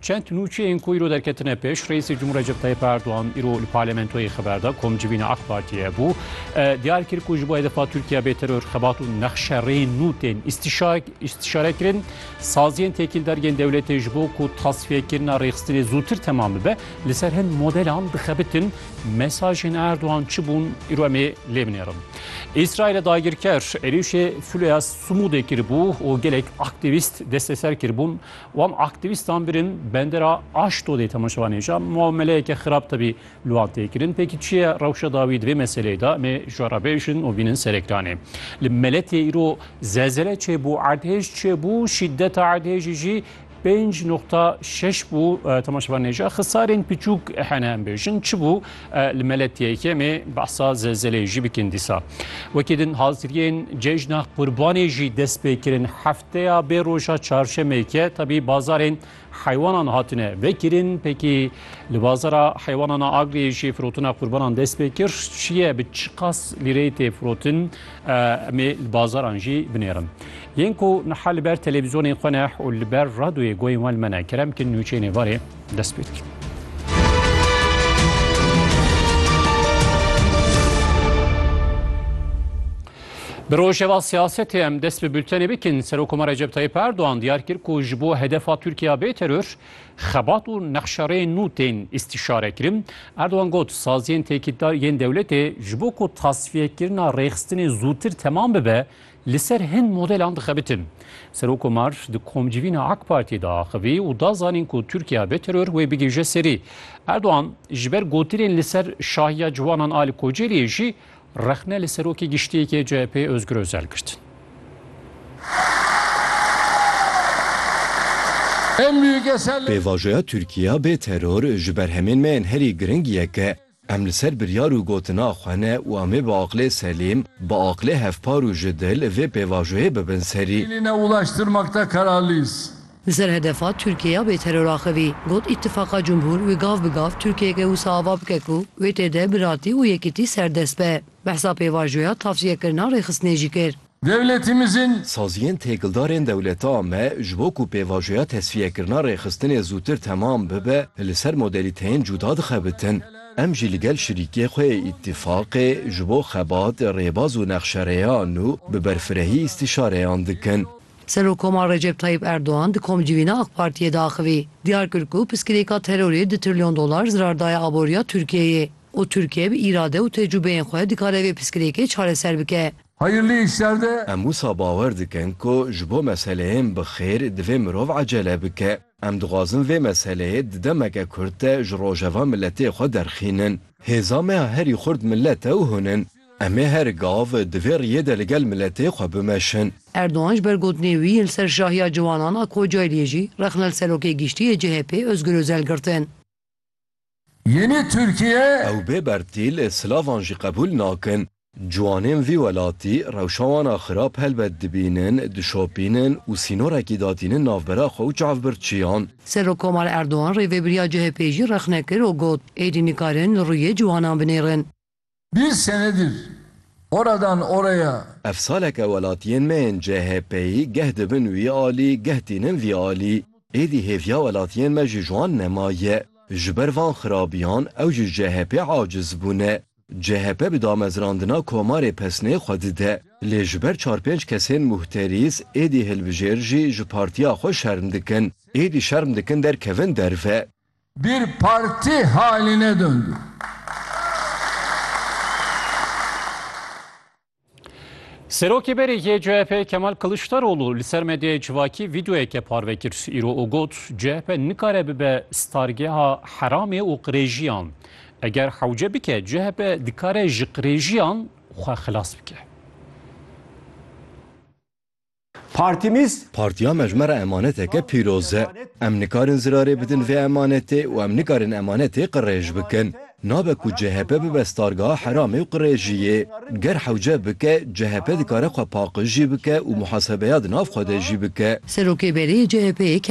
Çend nûçeyên ku îro derketine pêş, Reîsê Cumhur Recep Tayyip Erdogan îro li parlamentoyê xeber da ku em civîna AK Partiyê bû. Diyar kir ku ji bo hedefa Tirkiye bê teror, xebat û nexşe rêyên nû tên îstîşare kirin. Saziyên têkîldar yên dewletê ji bo ku tasfiyekirina rêxistinê zûtir temam bibe, li ser hin modelan dixebitin. Mesajên Erdogan çi bûn? Îro em ê lê binêrin. Îsraîlê dagirker êrîşê filoya Sumûdê kiribû û gelek aktîvîst desteser kiribûn. Wan aktîvîstan birîn bendera Aştodê temaşevanê ja muameleyeke xirab tevî li wan tê kirin. Pêkî çi ye rewşa dawî di vê meseleyê de em ê ji we re bêjin û bînin ser ekranê. Li Meletê îro zelzele çêbû, erdhêj çêbû, şîdeta erdhêjî jî pênc noqta şeş bû. Temaşevanê ja xisarên piçûk hene em bêjin. Çi bû? E li mele TKM'ê behsa zelzeleyê jî bikin dîsa. Wekî din haziriyên cejna qurbanê jî dest pê kirin. Hefteya bê roja çarşemê ke tebî bazarên heywanan hatine vekirin pekî li bazara heywanan a Agriyê jî firotina qurbanan dest pê kir. Çiye bi çiqas lîreyê tê firotin em ê li bazaran jî binêrin. Yên ku niha li ber televîzyonên xwe ne û li ber radyoyê goyên wan li me ne kerem kin nûçeyên êvarê dest pê dikin. Bi rojeva siyasetê em dest bi bültenê bikin Serokoma Recep Tayyip Erdoğan diyar kir ku ji bo hedefa Tirkiya bê teror xebat û nexşereyên nû tên îstîşare kirin. Erdoğan got saziyên têkîtdar yên dewletê ji bo ku tasfiyekirina rêxistinê zûtir temam bibe Li ser hin modelan dixebitin. Serokkomar di komcivîna AK Partiyê de axivî û da zanîn ku Tirkiye bê teror wê bigihije serî. Erdogan ji ber gotinên li ser şahiya ciwanan a li Kocaeliyê jî rexne li Serokê Giştî yê CHP'ê Ozgur Ozel girt. Pêvajoya Tirkiye bê teror ji ber hemên me yên herî giring yek e. Em li ser biryar û gotina xwe ne û em ê bi aqlê selîm, bi aqlê hevpar û ji dil vê pêvajoyê bibin serî. Hêlîne ulaştırmakta kararlıyız. Li ser hedefa Tirkiye ya bêteror axivî, got Îtîfaqa Cumhur wê gav bi gav Tirkiyeke wisa ava bike ku wê tê de biratî û yekîtî serdest be. Behsa pêvajoya tavsiyekirina rêxistinê jî kir. Dewletimizin. Saziyên têkildarên dewleta me ji bo ku pêvajoya tesfiyekirina rêxistinê zûtir temam bibe li ser modelîteyên cuda dixebitin. Em jî li gel şirîkê xwe yê Îtîfaqê ji bo xebat, rêbaz û nexşerêyan û bi berfirehî îstîşareyan dikin. Serokomar Recep Tayyîp Erdogan di komcivîna AK Partiyê de axivî, diyar kir ku piskirêka terorê du trilyon dolar zirar daye aboriya Tirkiyeyê û Tirkiye bi îrade û tecrûbeyên xwe dikare vê piskirêkê çareser bike. Hayırlı işler de. Em wisa bawer dikin ku ji bo meseleyên bi xêr divê mirov ecele bike. Em dixwazin vê meseleyê di demeke kurt de ji rojeva miletê xwe derxînin. Hêza me ya herî xurt milet e û hûn in. Em ê her gav di vê riyê de li gel miletê xwe bimeşin. Erdogan ji ber gotinên wî yên li ser şahiya ciwanan a Kocaeliê jî rexne li Serokê Giştî yê CHP'ê Ozgur Ozel girtin. Yenî Tirkiye. Ew bê bertîl silavan jî qebûl nakin. Ciwanên vî welatî rewşa wan a xirab helbet dibînin, dişopînin û sînorekî datînin navbera xwe û çavbirçiyan. Serokkomar Erdogan rêvebiriya CHP'ê jî rexne kir û got, Êdî nikarin li rûyê ciwanan binêrin. Bir senedir oradan oraya. Ev saleke welatiyên me yên CHP'yî geh dibin wî alî geh tînin vî alî. Êdî hêviya welatiyên me ji wan nema ye. Ji ber van xirabiyan ew ji CHP'ê aciz bûne. CHP bi damezrandina komarê pesnê xwe dide. Lê ji ber çar pênc kesên muhterîs êdî hilbijêr jî ji partiya xwe şerm dikin. Êdî şerm dikin derkevin derve. Bir parti hali ne döndü. Serokê berê yê CHP'ê Kemal Kılıçdaroğlu li ser medyaya civakî vîdeoyeke parve kir. Îro û got, CHP nikare bibe stargeha heramê û qirêjiyan. Eger hewce bike CHP dikare ji qirêjiyan xwe xilas bike. Partimiz. Partiya me ji me re emaneteke pîroz e. Em nikarin zirarê bidin vê emanetê û em nikarin emanetê qirêj bikin. Nabe ku chp bibe stargeha heramê û qirêjiyê. Ger hewce bike, chp dikare xwe paqij jî bike û muhasebeya di nav xwe de jî bike. Serokê berê yê chp, Kemal.